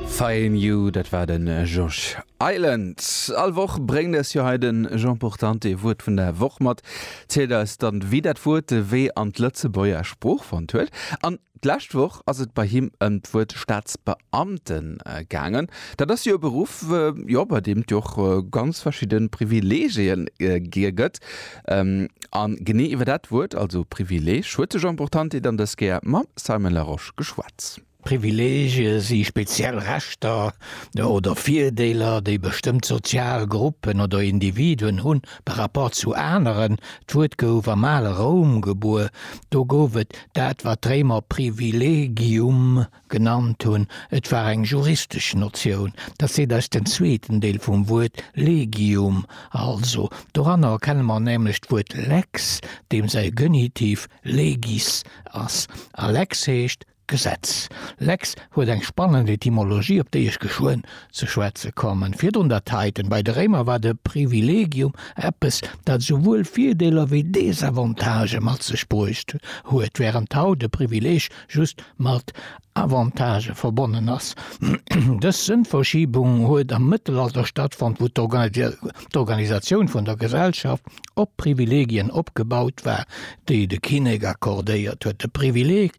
Fine You, dat war de Josh Island. All Woch bréngt eis jo hei de Jean Portante ee Wuert vun der Woch mat, zielt eis dann, wéi dat Wuert de Wee an d'Lëtzebuerger Sprooch fonnt huet. An d'lescht Woch ass et bei him ëm d'Wuert Staatsbeamte gaangen. Dat ass jo e Beruff, jo, bei deem et jo och ganz verschidde Privileegien gëtt. An genee iwwer dat Wuert, also Privileeg, huet de Jean Portante dann dës Kéier mam Simon Larosche geschwat. Privileege si speziell Rechter oder Virdeeler, déi bestëmmt sozial Gruppen oder Individuen hunn par rapport zu aneren. D'Wuert gouf am ale Roum gebuer, do gouf et dat wat d'Réimer privilegium. Genannt hunn. Et war eng juristesch Notioun, dat seet eis den zweeten Deel vum Wuert legium. Also, doranner erkenne mer nämlech d'Wuert lex, deem säi Genitiv legis ass. A lex heescht Gesetz. Lex huet eng spannend Etymologie, op déi ech geschwënn ze schwätze kommen. Virdrun dat heiten, Bei de Réimer war de privilegium eppes, dat souwuel Virdeeler wéi Desavantagë mat sech bruecht huet, wärend haut e Privileeg just mat Avantagë verbonnen ass. Dës Sënnverschiebung huet am Mëttelalter stattfonnt, wou d'Organisatioun vun der Gesellschaft op Privilegien opgebaut war, déi de Kinnek accordéiert huet. De Privileg,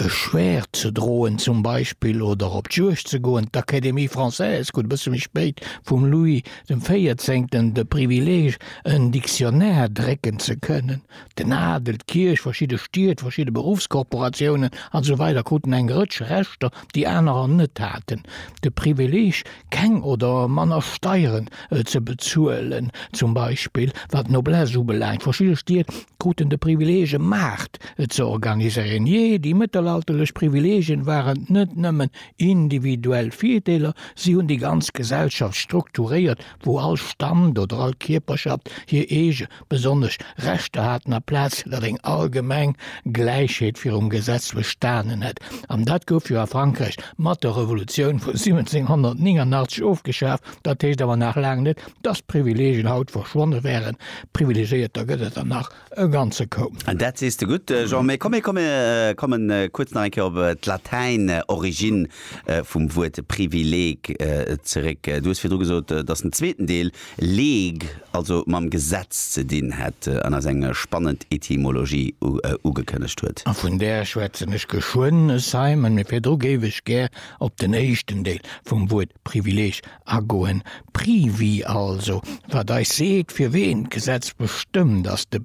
e Schwäert ze droen zum Beispill oder op d'Juegd ze goen, d'Académie française krut e bësse méi spéit vum Louis dem Véierzéngten de Privileg, en Dictionnaire drécken ze kënnen. Den Adel, d'Kierch, verschidde Stied, verschidde Beruffskorporatiounen a sou weider kruten eng Rëtsch Rechter, déi anerer net haten, de Privileeg, keng oder manner Steieren ze bezuelen zum Beispill, wat d'Noblesse ubelaangt. Verschidde Stied kruten de Privileeg, e Maart ze organiséieren. Jee, déi mëttelalterlech Privileegien waren net nëmmen individuell Virdeeler, si hunn déi ganz Gesellschaft strukturéiert, wou all Stand oder all Kierperschaft hir eege besonnesch Rechter haten, aplaz datt eng allgemeng Gläichheet virum Gesetz bestanen hätt. An dat gouf jo a Frankräich mat der Revolutioun vu 1789 ofgeschaf. Dat heescht awer nach laang net, datt Privileegien haut verschwonne wären. Privilegéierter gëtt et der nach e ganze Koup. Dat sees de gutt, Jean. Mee komm, mir komme kuerz nach eng Kéier op d'Latäin Origine vum Wuert Privileeg zeréck. Du hues virdru gesot, datt den zweeten Deel League, also mam Gesetz ze dinn hätt an eis eng spannend Etymologie ugekënnegt huet. A vun där schwätzen ech geschwënn, Simon, mee virdru géif ech gär op den éischten Deel vum Wuert Privileeg agoen, Privi also, wat eis seet, fir ween d'Gesetz bestëmmt, ass de.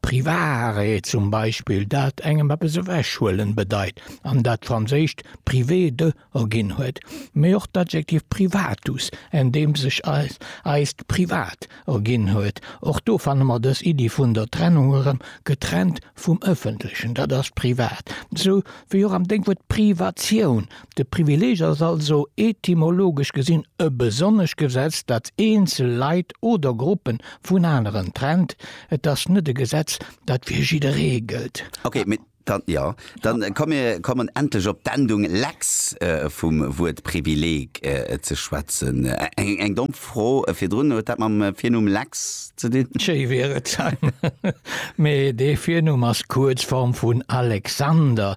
Privaarrêt zum Beispill, dat engem eppes ewechhuelen bedeit an dat d'Franséischt privé de erginn huet, mee och d'Adjektiv privatus, en deem sech eis eist Privat erginn huet. Och do fanne mer dës Iddi vun der Trennung erëm, getrennt vum Ëffentlechen, dat ass privat. Esou wéi och am Dénkwuert Privatioun, De Privileeg ass also etymologesch gesinn e besonnescht Gesetz, dat eenzel Leit oder Gruppen vun aneren trennt. Et ass net e Gesetz, dat fir jidderee gëllt. Ok, mee dann, jo, dann komm mir kommen endlech op d'Endung lex vum Wuert Privileeg ze schwätzen. Eng domm Fro virdrun, huet dat mam Virnumm Lex ze dinn? Schéi wier et, mee dee Virnumm ass d'Kuerzform vun Alexander,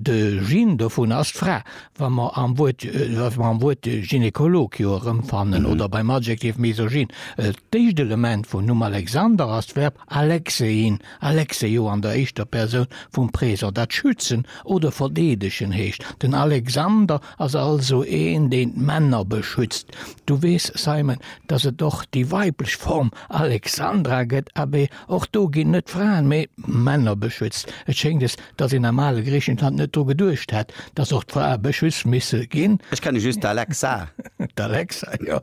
De Gene dovun ass d'Fra, wa mer am Wuert, wa mer am Wuert Gynekolog jo erëmfannen oder beim Adjektiv Misogyn. D'éischt Element vum Numm Alexander ass d'Verb alexein, alexeio an der éischter Persoun vum Présent, dat schützen oder verdeedegen heescht. Den Alexander ass also een, deen d'Männer beschützt. Du weess, Simon, dass et och déi weiblech Form Alexandra gëtt. Abee, och do ginn net d'Fraen, mee d'Männer beschützt. Et schéngt, es Dass een am ale Griichenland net dru geduecht hätt, dass och d'Frae beschützt misse ginn. Ech kenne just d'Alexa. D'Alexa, jo.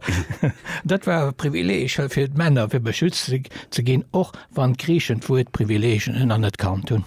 Dat war e Privileeg fir d'Männer, fir beschützt ze ginn, och wann d'Griichen d'Wuert Privileeg anerkannt hunn.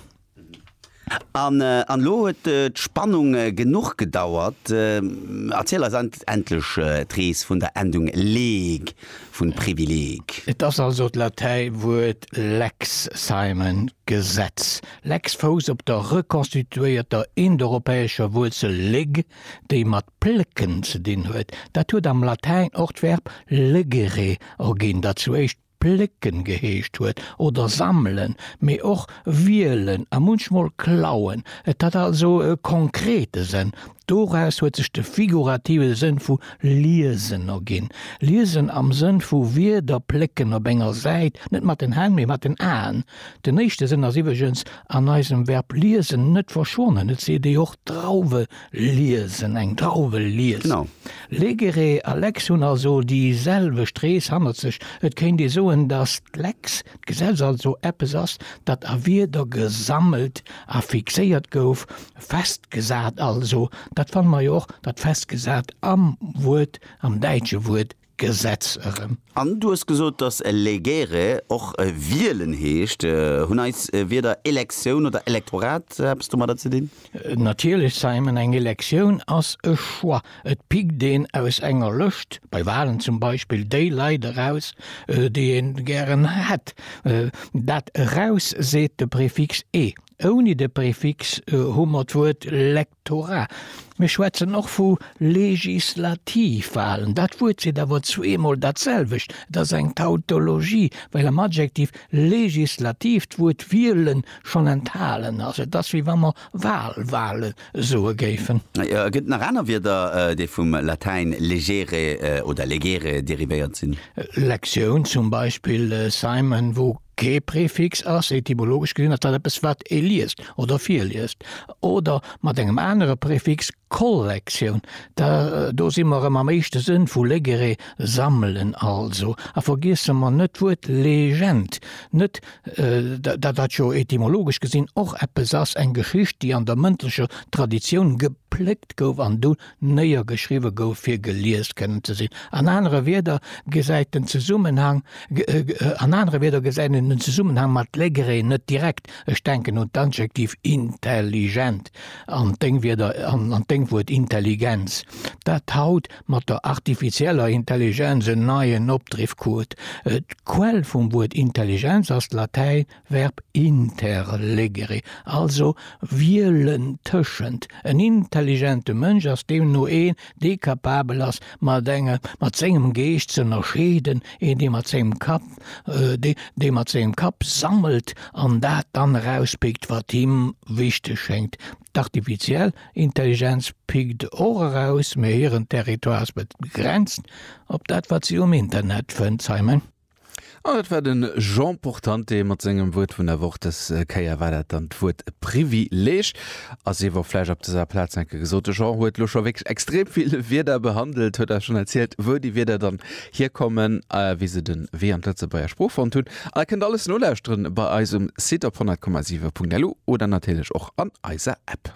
An elo huet d'Spannung genuch gedauert. Erziel eis endlech d'Rees vun der Endung leg vun Privileg. Et ass also d'Latäiwuert lex, Simon, Gesetz. Lex Fous op der rekonstituéierter indoeuropäescher Wuerzel leg, déi mat plécken ze dinn huet. Dat huet am Latäin och d'Verb legere erginn, dat zu éischt plécken geheescht huet, oder sammelen, mee och wielen a munchmol klauen. Et hat also e konkrete Sënn. Doraus huet sech de figurative Sënn vu liesen erginn, liesen am Sënn vu Wierder plécken op enger Säit, net mat den Hänn, mee mat den Aen, Den éischte Sënn ass iwweregens an eisem Verb liesen net verschwonnen, et seet ee och Drauwe liesen, eng Drauwe liest. Legere a Lex hunn also déi selwecht Rees hannert sech. Et kéint ee soen, datt d'Lex, d'Gesetz, also eppes ass, dat a Wierder gesammelt a fixéiert gouf, festgesat also. Dat fanne mer jo och, dat festgesat am Wuert, am däitsche Wuert Gesetz erëm. An du hues gesot, dass elegere och wielen heescht. Hunn eis Wierder Elektioun oder Elektorat eppes domadder ze dinn? Natierlech, Simon. Eng Elektioun ass e Choix. Et pickt een aus enger Lëscht, bei Walen zum Beispill, déi Leit eraus, déi ee gären hätt. Dat eraus seet de Prefix e. Ouni de Prefix hu mer d'Wuert lek. Tora, Mir schwätzen och vu Legislativwahlen. Dat Wuert seet awer zweemol datselwecht. Et ass eng Tautologie, well am Adjektiv legislativ d'Wuert wielen schonn enthalen ass. Et ass, wéi wa mer Wahlwahle soe géifen. Et gëtt nach aner Wierder, déi vum Latäin legere oder legere derivéiert sinn. Lektioun zum Beispill, Simon, wou Kee Prefix ass, etymologesch gesinn, ass dat eppes, wat ee liest oder virliest, oder mat engem anere Prefix, Kollektioun, da do si mer erëm am éischte Sënn vu legere, sammelen also. A vergiesse mer net d'Wuert Legend net, dat dat jo etymologesch gesinn och eppes ass, eng Geschicht, déi an der mëndlecher Traditioun gepléckt gouf an du néiergeschriwwe gouf fir gelies kënnen ze sinn, an anere Wierder gesäit den Zesummenhang, an anere Wierder gesäit een den Zesummenhang mat Legree net direkt, ech denken un d'Adjektiv intelligent an d'Déngwierder, an an d'Déngwuert Intelligenz, dat haut mat der artifizieller Intelligenz en neien Opdriff krut. D'Quell vum Wuert Intelligenz ass d'Latäin Verb interlegere, also wielen tëschent. En intelligente Mënsch ass deemno een, dee kapabel ass, mat engem, mat sengem Geescht ze ënnerscheeden, een, dee mat sengem Kapp, dee, dee mat sengem Kapp sammelt an dat dann erauspickt, wat him wichteg schéngt. D'artificiell Intelligenz pickt och eraus, mä hiren Territoire ass begrenzt op dat, wat si um Internet fënnt, Simon. An dat war den Jean Portante mat sengem Wuert vun der Woch. Dës Kéier war dat dann d'Wuert Privileeg. A sief och vläicht op dëser Plaz enke gesot. De Jean huet elo scho wierklech extrem vill Wierder behandelt, huet eis schonn erzielt, wou déi Wierder dann hierkommen, wéi se den Wee an d'Lëtzebuerger Sprooch fonnt hunn. An dat kënnt alles nolauschteren bei eis um Site op 100,7.lu oder natierlech och an eiser App.